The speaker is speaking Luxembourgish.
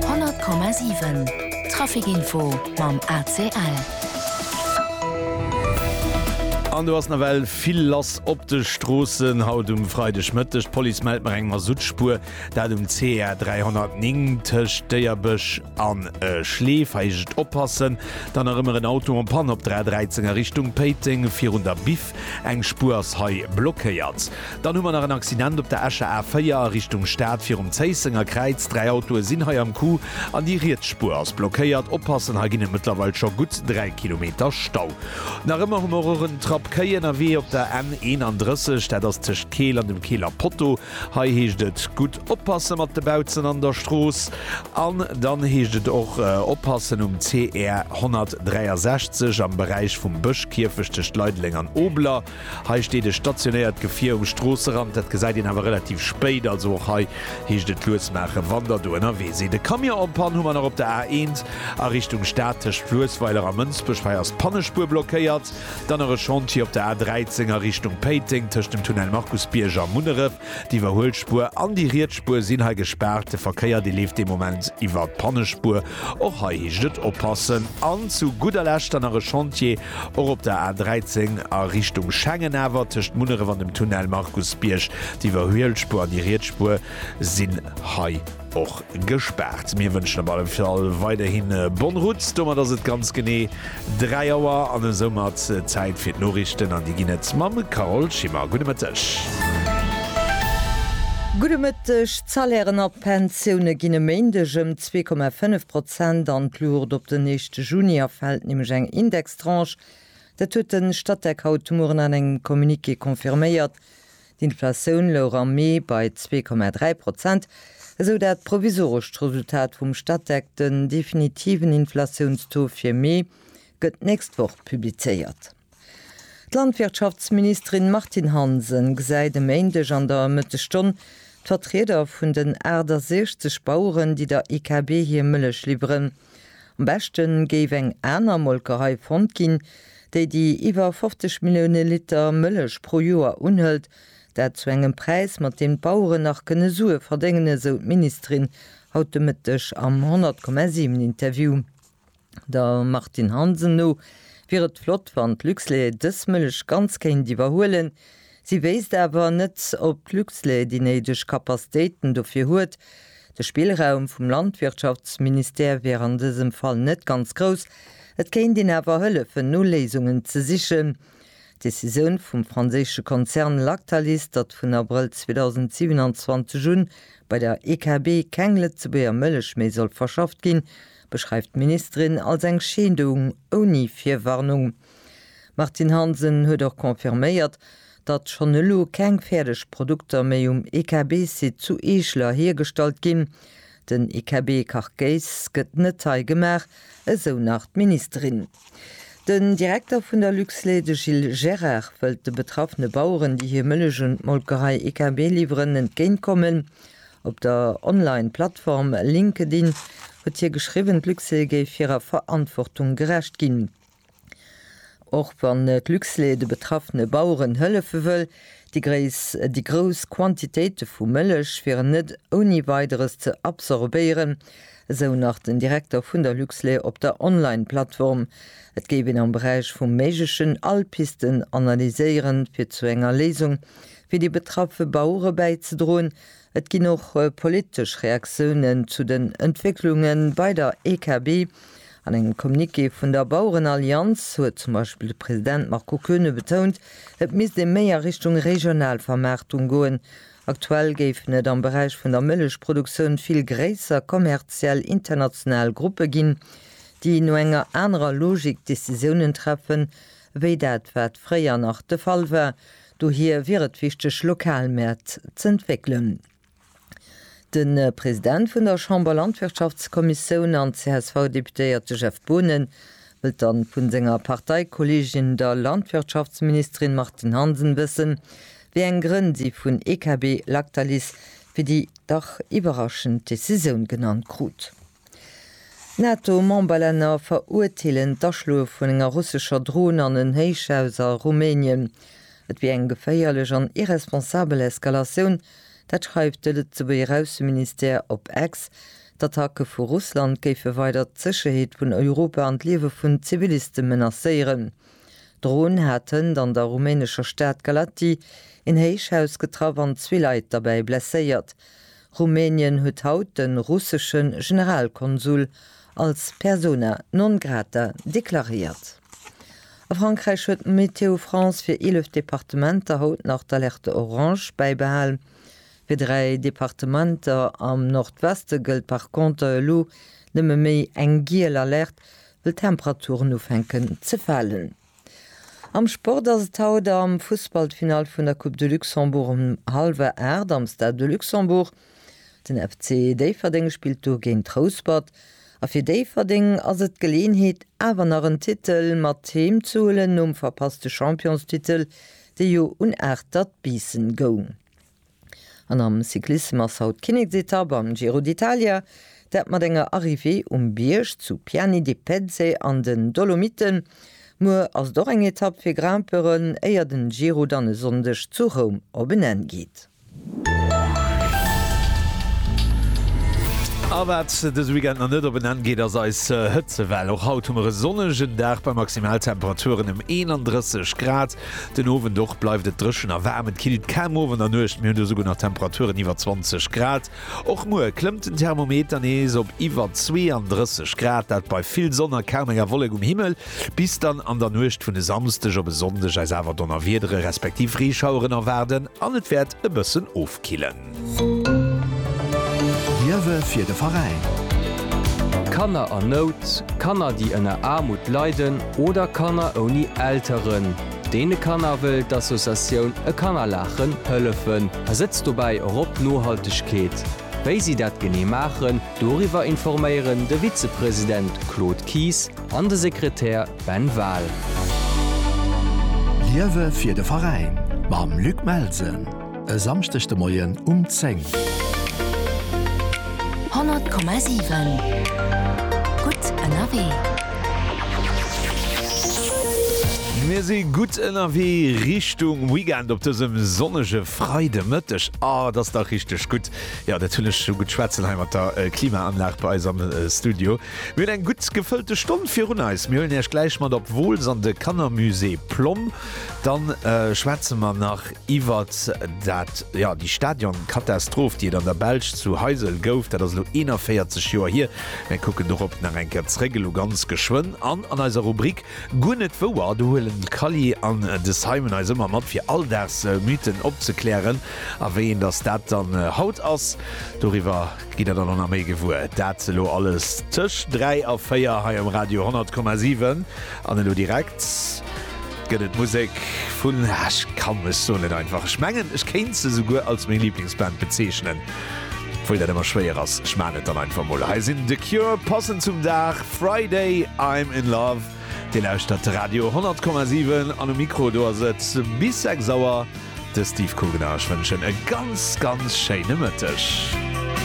100,7 Trafic Info mam ACL. An do ass nawell vill lass op de Stroossen haut um Freidegmëtteg. D'Police mellt nach eng Masuttspuer, dat um CR 309 tëscht Déierbësch an Schleef. Hei heescht et oppassen. Dann nach ëmmer en Auto en Panne op der A13 a Richtung Péiteng virun der Bif. Eng Spuer ass hei blockéiert. Dann hu mer nach en Accident op der Escher A4 a Richtung Stad virum Zéissenger Kräiz. Dräi Autoe sinn hei am Coup an déi riets Spuer ass blockéiert. Oppassen, hei ginn et mëttlerweil scho gutt 3 Kilometer Stau. Nach ëmmer hu mer och en Trappkei ënnerwee op der N 31, dat ass tëscht Keel an dem Keeler Potto. Hei heescht et gutt. Oppasse mat de Bautzen an der Strooss an dann heescht et och oppassen um CR 163 am Beräich vum Bëschkierfecht tëscht Leideleng an Obeler. Hei steet e stationéiert Gefier um Stroosserand. Dat gesäit een awer relativ spéit, also och hei heescht et lues maachen, wann der do ënnerwee sidd. E Camion en Panne hu mer nach op der A1 a Richtung Stad tëscht Fluessweiler a Mënsbech. Hei ass d'Pannespuer blockéiert. Dann nach e Chantier op der A13 a Richtung Péiteng tëscht dem Tunnel Markusbierg a Munneref. D'Iwwerhuelspuer an déi riets Spuer sinn hei gespaart. De Verkéier, dee leeft dee Moment iwwer d'Pannespuer. Och hei heescht et oppassen. An zu gudder Lescht dann nach e Chantier, och op der A 13 a Richtung Schengen, awer tëscht Munneref an dem Tunnel Markusbierg. D'Iwwerhuelspuer an déi riets Spuer sinn hei. och gespaart. Mir wënschen op alle Fall weiderhi bonne route. Domat ass et ganz genee 3 Auer an esou mat Zäit fir d'Noriichten an déi ginn et mam Carole Schimmer. Gudde Mëtteg. Gudde Mëtteg. D'Salairen a d'Pensioune ginn e Méindeg ëm 2,5 Prozent an d'Luucht op den 1. Juni. A fält nämlech eng Indextranche. Dat huet de Statec haut de Mueren an engem Communiqué confirméiert. D'Inflatioun louch am Mee bei zwee Komma dräi Prozent, esou dat provisorescht Resultat vum Statec. Den definitiven Inflatiounstaux fir Mee gëtt d'nächst Woch publizéiert. D'Landwirtschaftsministerin Martine Hansen gesäit e Méindeg an der Mëttesstonn d'Vertrieder vun den 68 Baueren, déi der IKB hir Mëllech liwweren. Am beschte géif eng aner Molkerei fonnt ginn, déi déi iwwer 50 Millioune Liter Mëllech pro Joer unhëlt, dat zu engem Präis, mat deem d'Baueren nach kënne Sue verdéngen, esou d'Ministerin haut de Mëtteg am 100,7 Interview. Der Martine Hansen no wier et flott, wann d'Luxlait dës Mëllech ganz kéint iwwerhuelen, Si wéisst awer net, ob d'Luxlait déi néideg Kapastéiten dofir huet. De Spillraum vum Landwirtschaftsministère wier an dësem Fall net ganz grouss, et kéint een awer hëllefen, no Léisungen ze sichen. D'Decisioun vum franséische Konzern Lactalis, datt vun Abrëll 2027 un bei der EKB keng Lëtzebuerger Mëllech méi soll verschafft ginn, beschreift d'Ministerin als eng Scheedung ouni Virwarnung. D'Martine Hansen huet och confirméiert, datt schonn elo keng fäerdeg Produkter méi um EKB-Site zu Eeschler hiergestallt ginn. Den EKB-Carcase gëtt net hei gemaach, esou nach d'Ministerin. Den Direkter vun der Luxlait, de Gilles Gerard, wëllt de betraffene Baueren, déi hir Mëllech un d'Molkerei EKB liwweren, entgéintkommen. Op der Online-Plattform LinkedIn huet hie geschriwwen, d'Luxlait géif hirer Verantwortung gerecht ginn. Och wann d'Luxlait de betraffene Baueren hëllefe wëll, déi grouss Quantitéite vu Mëllech wieren net ouni Weideres ze absorbéieren, esou nach den Direkter vun der Luxlait op der Online-Plattform. Et géif een am Beräich vum Méiglechen all Pisten analyséieren, fir zu enger Léisung fir déi betraffe Bauere bäizedroen, Et ginn och politesch Reaktiounen zu den Entwécklunge bei der EKB. An engem Communiqué vun der Bauerenallianz huet zum Beispill de President Marco Koeune betount, et misst ee méi a Richtung regional Vermaartung goen. Aktuell géifen et am Beräich vun der Mëllechproduktioun vill gréisser kommerziell international Gruppe ginn, déi no enger anerer Logik Decisiounen treffen, ewéi dat wat fréier nach de Fall war. Dohier wier et wichteg, lokal Mäert z'entwéckelen. De President vun der Chamberlandwirtschaftskommissioun an CSV-Deputéierte Jeff Boonen wëllt dann vu senger Parteikolleegin, der Landwirtschaftsministerin Martine Hansen wëssen, wéi eng Grënn si vun EKB Lactalis fir déi dach iwwerraschend Decisioun genannt krut. D'NATO-Memberlänner verurteelen d'Aschloe vun enger russescher Dron an en Héichhaus a Rumänien. Et wier eng geféierlech an irresponsabel Eskalatioun, dat schreift de Lëtzebuerger Ausseministère op X. D'Attacke vu Russland géife weider d'Sécherheet vun Europa an d'Liewe vun Ziviliste menacéieren. D'Dron hat hënt an der rumänescher Stad Galaţi een Héichhaus getraff an zwee Leit derbäi blesséiert. Rumänien huet haut de russesche Generalkonsul als persona non grata deklaréiert. A Frankräich huet Météo France fir 11 Departementer haut nach d'Alerte orange bäibehal. Fir dräi Departementer am Nordweste gëllt par Konter elo nëmme méi eng giel Alerte, wëll d'Temperaturen ufänken ze falen. Am Sport ass et haut am Fussball d'Finall vun der Coupe de Luxembourg um hallwer 8 am Stade de Luxembourg. Den FC Déifferdeng spillt do géint Rouspert a fir Déifferdeng ass et d'Geleeënheet awer nach en Titel mat Heem ze huelen nom verpasste Championstitel dee jo un 8 dat Biissen goung. An am Cyclissem ass haut d'Kinneksetapp am Giro d'Italia, dat mat enger Arrivée um Bierg zu Piani di Pezze an den Dolomiten. Muer ass et och eng Etapp fir Grimpeuren, éier den Giro dann e Sonndeg zu Roum op en Enn geet. A wat dëse Weekend nach net op en Enn geet, ass eis Hëtzewell. Och haut hu mer e sonnegen Dag bei Maximaltemperaturen ëm 31 Grad. Den Owend och bleift et dréchen a waarm. Et killt kaum Owend a Nuecht, mir hunn do souguer nach Temperaturen iwwer 20 Grad. Och muer klëmmt den Thermometer nees op iwwer 32 Grad, dat bei vill Sonn a kaum enger Wollek um Himmel. Bis dann an der Nuecht vun e Samsdeg op e Sonndeg eis awer Donnerwiedere respektiv Reeschaueren erwaarden an et wäert e bëssen ofkillen. Liewe fir de Veräin! Kanner an Nout, Kanner déi ënner Aarmut leiden oder Kanner ouni Elteren. Deene Kanner wëll d'Associatioun E Kanner laachen hëllefen a setzt dobäi och op d'Nohaltegkeet. Wéi si dat genee maachen, doriwwer informéieren de Vizepresident Claude Kies an de Sekretär Ben Wahl. Liewe fir de Veräin mam Luc Melsen! E Samschdeg de Moien um 10. 100,7 Gutt ënnerwee. Mir si gutt ënnerwee Richtung Weekend op dësem sonnege Freidemëtteg. A, et ass dach richteg gutt. Jo, dat hunn ech esou gutt schwätzen hei mat der Klimaanlag bei eis am Studio. Mir hunn eng gutt gefëllte Stonn virun eis. Mir huelen Iech gläich mat op Wooltz an de Kannermusée Plomm. Dann schwätze mer nach Iwwer dat, jo, déi Stadionkatastroph, déi et an der Belsch zu Heysel gouf, dat ass elo 41 Joer hier. Mir kucken dorop nach eng Kéier zréck, elo ganz geschwënn. An an eiser Rubrik Guer net wouer, do huelen d'Kally an de Simon eis ëmmer mat, fir Alldagsmythen opzeklären. A wéi een dass dat dann haut ass, doriwwer. Gitt der dann och nach méi gewuer. Dat elo alles tëscht 3 a 4 hei um Radio 10,7. An elo direkt gëtt et Musek vun, ah, ech ka mech soen, net einfach. Ech mengen, ech kéint se souguer als meng Liblingsband bezeechnen, obwuel dat ëmmer schwéier ass. Ech maachen et dann einfach mol. Hei sinn The Cure, passend zum Dag, Friday, I'm in love. Dir lauschtert Radio 10,7 an um Mikro do ass et bis 6 Auer de Steve Kugener. Ech wënschen e ganz, ganz schéine Mëtteg.